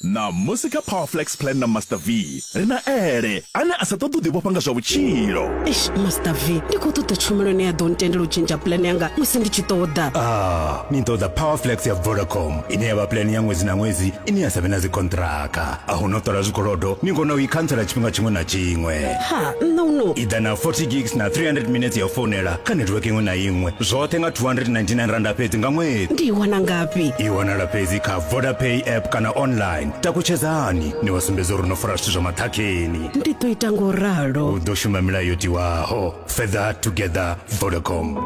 Ṋamusi kha Power Flex Plan na Master V, ri na Ele, ane a sa ṱoḓi u ḓivhofha nga zwa vhutshilo. Eish, Master V, ndi khou ṱoḓa tshumelo ine ya ḓo ntendela u tshintsha plan yanga musi ndi tshi ṱoḓa. Ah, ni ṱoḓa Power Flex ya Vodacom, ine ya vha plan ya ṅwedzi na ṅwedzi ine ya sa vhe na dzikhonṱhiraka. a hu no ṱola zwikolodo ni kona u i khantsela tshifhinga tshiṅwe na tshiṅwe ha nṋa u no iḓa na 40 gigs na 300 minutes ya u founela kha netiweke iṅwe na iṅwe zwoṱhe nga 299 randa fhedzi nga ṅwedzi ndi i wana ngafhi i wanala fhedzi kha vodapay app kana online takutshedzani ni wa sumbedza uri no fara zwithu zwa maṱhakheni ndi ḓo ita ngo ralo u ḓo shuma milayo yo tiwaho fedha together vodacom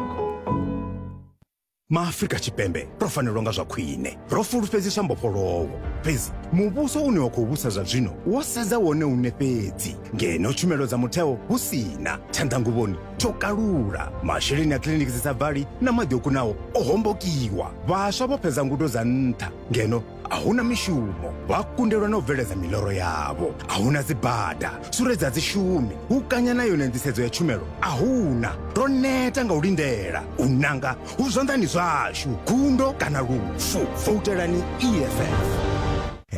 maafrika tshipembe ro fanelwa nga zwa khwine ro fulufhedziswa mbofholowo fhedzi muvhuso une wa khou vhusa zwa zwino wo sedza wone une fhedzi ngeno tshumelo dza mutheo hu si na tshanḓanguvhoni tsho kalula masheleni a kiliniki dzi sa bvali na maḓi o kunaho o hombokiwa vhaswa vho fhedza ngudo dza nṱha ngeno a huna mishumo vha kundelwa na u bveledza miloro yavho a huna dzibada suredza dzi shumi hu kanya na yone nḓisedzo ya tshumelo a huna ro neta nga u lindela u nanga hu zwanḓani zwashu gundo kana lufu voutelani eff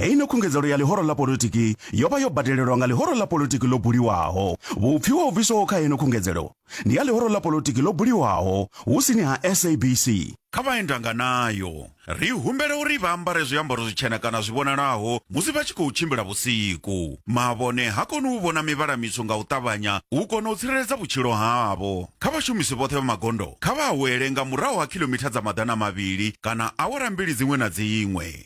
heino khungedzelo ya ḽihoro ḽa politiki yo vha yo badelelwa nga ḽihoro ḽa politiki ḽo buliwaho vhupfiwa ho bviswaho kha heino khungedzelo ndi ya lihoro ḽa polotiki ḽo buliwaho hu sini ha sabc kha vha endanga nayo ri humbela uri vha ambare zwiambaro zwitshena kana zwi vhonalaho musi vha tshi khou tshimbila vhusiku mavhone ha koni u vhona mivhala mitswu nga u ṱavhanya u kona u tsireledza vhutshilo havho kha vhashumisi vhoṱhe vha magondo kha vha awele nga murahu ha khilomitha dza maḓana mavhili kana awara mbili dziṅwe na dziṅwe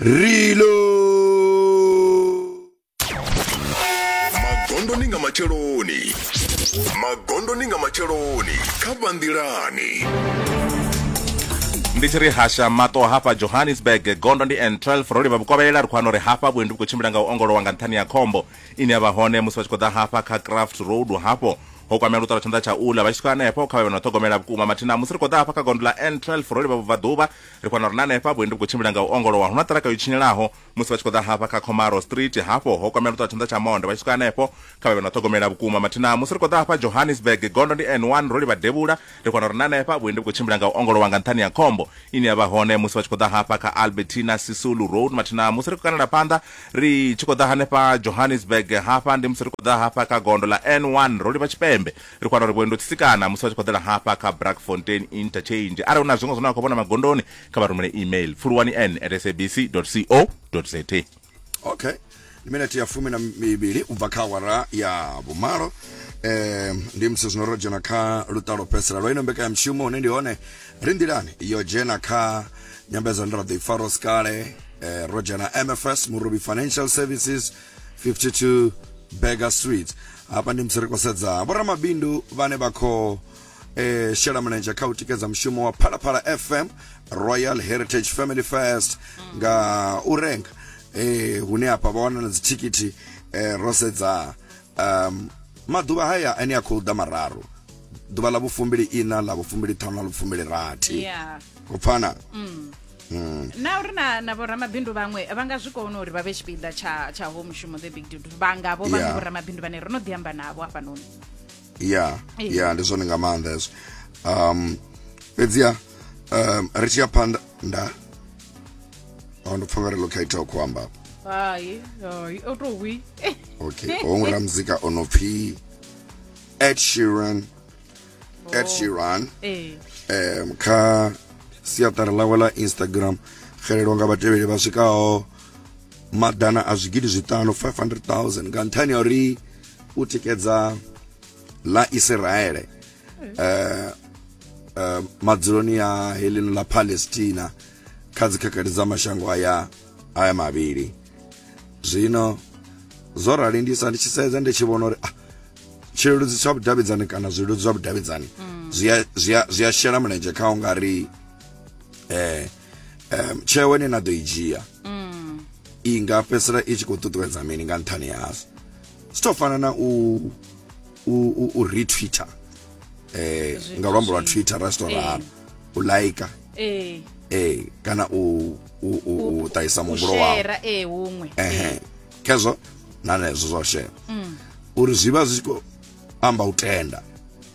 rilo magondoni nga matsheloni magondoni nga matsheloni kha vhanḓilani ndi tshi ri hasha mato hafha johannesburg gondo ndi n 12 ro livha vhukovhelela ri khou ano ri hafha vhuendi vhu khou tshimbila nga u ongolowa nga nṱhani ya khombo ine ya vha hone musi vha tshi khou ḓa hafha kha craft road hafho ho kwamea luṱala tshanḓa tsha ula vha tshi swika hanefho kha vhe vha na ṱhogomela vhukuma mathina musi ri khou ḓa hafha kha gondo ḽa n 12 ro livha vhubvaḓuvha ri kona uri na hanefha vhuendi vhu khou tshimbila nga u ongolowa hu na ṱiraka yo tshinyelaho musi vha tshi khou ḓa hafha kha comaro street hafho ho kwamela ṱwa tshanḓa tsha monde vha tshi swika hanefho kha vhe vhe na ṱhogomela vhukuma mathina musi ri khou ḓa hafha johannesburg gondo ndi n1 ro livha devhula ri kona uri na hanefha vhuendi vhu khou tshimbila nga u ongolowa nga nṱhani ya khombo ine ya vha hone musi vha tshi khou ḓa hafha kha albertina sisulu road mathina musi ri khou kanela phanḓa ri tshi khou ḓa hanefha johannesburg hafha ndi musi ri khou ḓa hafha kha gondo ḽa n1 ro livha tshipembe Ri khou wana uri vhuendo tsisikana musi vha tshi khou ḓela hafha kha Brakfontein Interchange. Arali hu na zwiṅwe zwine vha khou vhona magondoni, kha vha rumele email pfuluwani n at sabc co za. Okay. Ndi minete ya fumi na mivhili u bva kha awara ya vhumalo eh ndi musi zwino ro dzhena kha luṱa lwo fhedzisela lwa ino mbekanyamushumo hune ndi hone ri nḓilani yo dzhena kha nyambedzano ra ḓo i fara sikale eh, ro dzhena mfs murubi financial services 52 Burger Street hafha ndi musi ri khou sedza vhoramabindu vhane vha khou eh, shela mulenzhe kha u tikedza mushumo wa phalaphala fm royal heritage family first nga u renga eh, hune hafha vha wana na dzithikithi eh, ro sedza um, maḓuvha haya ane a khou ḓa mararu ḓuvha ḽa vhufumbili ina ḽa vhufumbili ṱhanu na vhufumbili rathi Yeah. u pfana na uri na na vhoramabindu vhaṅwe vha nga zwi kona uri vha vhe tshipiḓa tsha tsha ho mushumo the big dude vha nga vho vhaṅwe Yeah. vhoramabindu vhane ro no ḓi amba navho hafhanoni ya Ee. ya ndi zwone nga maanḓa hezwo um fhedziha um ri tshi ya phanḓa nda a ndo pfha ngari lo kha ita ku amba hai hai o tou hwi okay ho ngura muzika o no pfi Ed Sheeran ed sheeran ee um kha siaṱari ḽawe ḽa instagram xelelwa nga vhatevheli vha swikaho maḓana a zwigidi zwiṱanu 500000 nga nṱhani ya uri u tikedza ḽa isiraele um um madzuloni a heḽino ḽa palestina kha dzikhakhathi dza mashango aya aya mavhili zwino zwo rali ndi sa ndi tshi sedza ndi tshi vhona uri ah, tshileludzi tsha vhudavhidzani kana zwileludzi zwa vhudavhidzani zwi a- zwi a- zwi a shela mulenzhe kha u nga ri eh, em, tsheo ine na ḓo i dzhia i nga fhedzisela i tshi khou ṱuṱuwedza mini nga nṱhani hazwo zwi tou fana na u u, u, u retwitter eh, nga luambo lwa twitter ra zwi tou ralo u like eh eh kana u u u taisa muhumbulo wao share eh huṅwe ehe eh. kezwo na nezwo zwa share mm. uri zwi vha zwi khou amba u tenda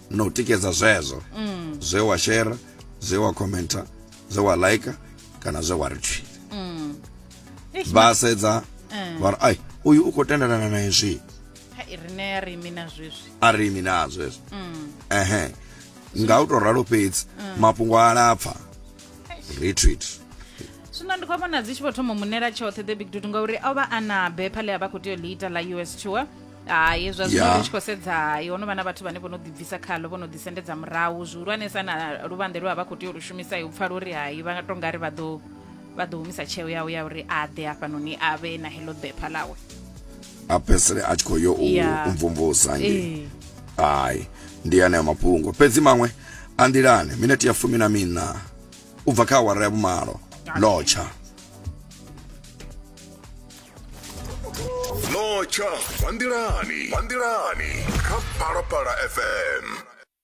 na u tikedza zwezwo mm. zwe wa share zwe wa commenta zwe wa like kana zwe wa retweet mm. vha sedza eh. vha ri ai uyu u khou tendelana na izwi rine a ri imi na zwezwi a ri imi na zwezwi ehe nga u tou ralo fhedzi mafhungo a lapfa retreat zwino ndi khou vhona dzi tshi vho thoma munela tshoṱhe the big dude ngauri o vha a na bepha ḽe a vha khou tea u ḽi ita ḽa us tour hai zwa zwino Yeah. ri tshi khou sedza hai ho no vha na vhathu vhane vho no ḓibvisa khalo vho no ḓisendedza murahu zwihulwanesa na luvhanḓe lwe a vha khou tea u lu shumisa u pfa luri hai vha to nga ri vha ḓo vha ḓo humisa tsheo yawe ya uri a ḓe hafhanoni a vhe na heḽo bepha ḽawe a fhedzisele a tshi khou yo u Ya. u mvumvusa nge Ee. hai ndi aneyo mafhungo fhedzi maṅwe a nḓilani minete ya fumi na miṋa u bva kha awara ya vhumalo lotsha Locha, Bandilani, Bandilani, Kapalapala FM.